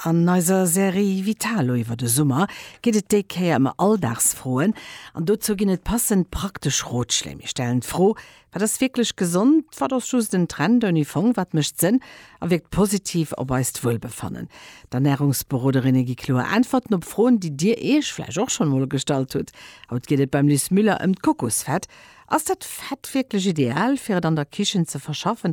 An eiser Serie Vitalo iwwer de Summer geet et déi Kéier ëm Alldagsfroen. An dozou ginn et passend praktesch Rotschléi. Mir stellen d'Fro, Wat ass wierklech gesond? Wat ass just en Trend ouni Fong? Wat mécht Sënn a wierkt positiv op eist Wuelbefannen? D'Ernärungsberoderinne gi kloer Äntwerten op Froen, déi dir iech vläicht och schonn emol gestallt hutt. Haut geet et beim Luce Müller ëm d'Kokosfett. Ass dat Fett wierklech ideal, fir et an der Kichen ze verschaffen?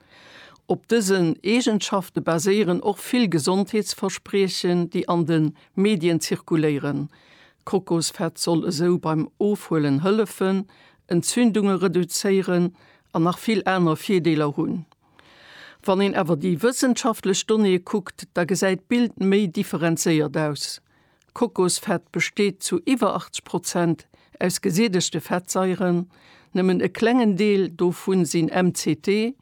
Op dësen Eegenschafte baséieren och vill Gesondheetsverspriechen, déi an de Medien zirkuléieren. Kokosfett soll esou beim Ofhuelen hëllefen, Entzündunge reduzéieren an nach vill aner Virdeeler hunn. Wann een awer déi wëssenschaftlech Donnéeë kuckt, da gesäit d'Bild méi differenzéiert aus. Kokosfett besteet zu iwwer 80 Prozent aus gesiedegte Fettsaieren, nëmmen e klengen Deel dovu sinn MCT,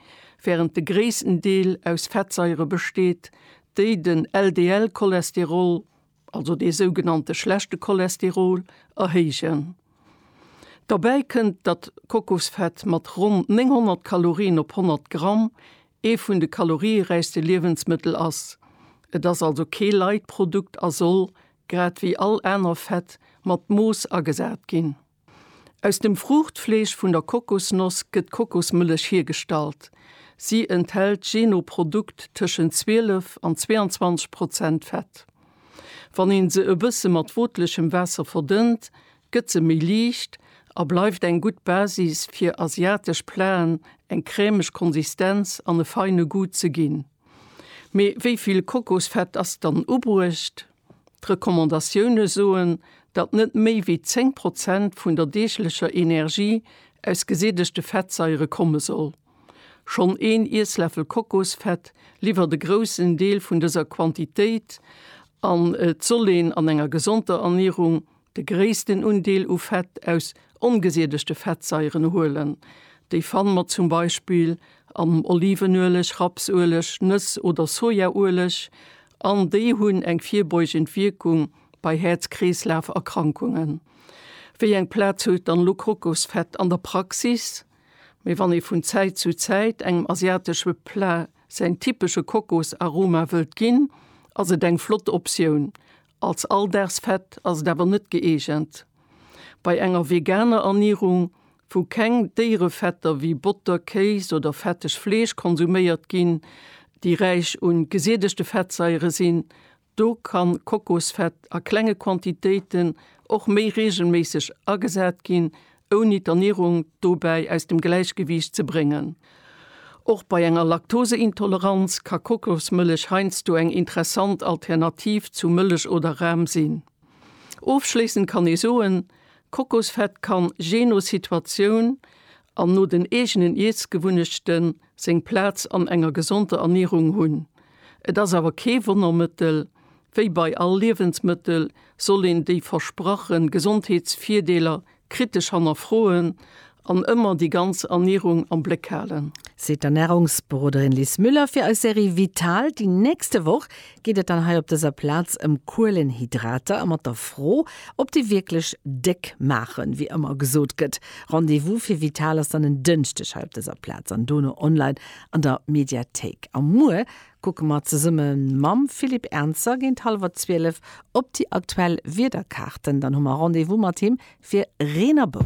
wärend de gréissten Deel aus Fettsaiere besteet, déi den LDL-Cholesterol, also dee sougenannte schlechte Cholesterol, erhéijen. Derbäi kënnt, datt Kokosfett mat ronn 900 Kalorien op 100 Gramm ee vun de kalorieräichste Liewensmëttel ass. Et ass also kee light Produkt a soll, grad wéi all aner Fett, mat Mooss agesat ginn. Aus dem Fruuchtfleesch vun der Kokosnoss gëtt d'Kokosmëllech hiergestallt. Si enthält jee no Produkt tëschent 12 an 22 Prozent Fett. Wann ee se e bësse mat wootlechem Waasser verdënnt, gëtt se méi liicht a bleift eng gutt Basis fir asiatesch Platen eng crèmeg Konsistenz an e feine Goût ze ginn. Mee wéi vill Kokosfett ass dann ubruecht? D'Recommandatioune soen, datt net méi wéi 10 Prozent vun der deeglecher Energie aus gesättegte Fettsaiere komme soll. Schonn een Iessläffel Kokosfett liwwert e groussen Deel vun dëser Quantitéit an et soll een an enger gesonder Ernierung De gréissten Undeel u Fett aus ongesiedegte Fettsaieren huelen. Déi fanne mer zum Beispill am Olivenueleg, Rapsueleg, Nëss oder Sojaueleg an déi hunn eng virbeugend Wierkung bei Häerz-Kreeslaf-Erkrankungen. Wéi eng Plaz huet dann elo Kokosfett an der Praxis? Mee wann ee vun Zäit zu Zäit engem asiatesche Plat säin typesche Kokosaroma wëllt ginn, ass et eng flott Optioun Als Alldagsfett ass et awer net gëeegent. Bei enger veganer Ernierung, wou keng Déierefetter wéi Botter, Kéis oder fetteg Fleesch konsuméiert ginn, déi räich un gesiedegte Fettsaiere sinn, do ka Kokosfett a klenge Quantitéiten och méi reegelméisseg agesat ginn, ouni d'Ernierung dobäi aus dem Gläichgewiicht ze bréngen. Och bei enger Laktoseintoleranz ka Kokosmëllech heiansdo eng interessant Alternativ zu Mëllech oder Ram sinn. Ofschléissend kann ee soen, Kokosfett kann, jee no Situatioun an no den eegenen Iessgewunnechten, seng Plaz an enger gesonder Ernierung hunn. Et ass awer kee Wonnermëttel, wéi bei all Liewensmëttel soll een déi versprache Gesondheetsvirdeeler kritesch hannerfroen an ëmmer déi ganz Ernierung am Bléck halen. Seet d'Ernärungsberoderin Liz Müller fir eis Serie Vital. Déi nächste Woch geet et dann hei op dëser Plaz ëm Kuelenhydrater a mat der Fro, ob déi wierklech déck maachen, wéi ëmmer gesot gëtt. Rendez-vous fir Vital ass dann en Dënschdeg hei op dëser Plaz an dono online an der Mediathéik. A muer kucke mer zesumme mam Philippe Ernzer géint hallwer zwielef op déi aktuell Wiederkaarten. Dann hu mer Rendez-vous mat him fir Reen a Bou.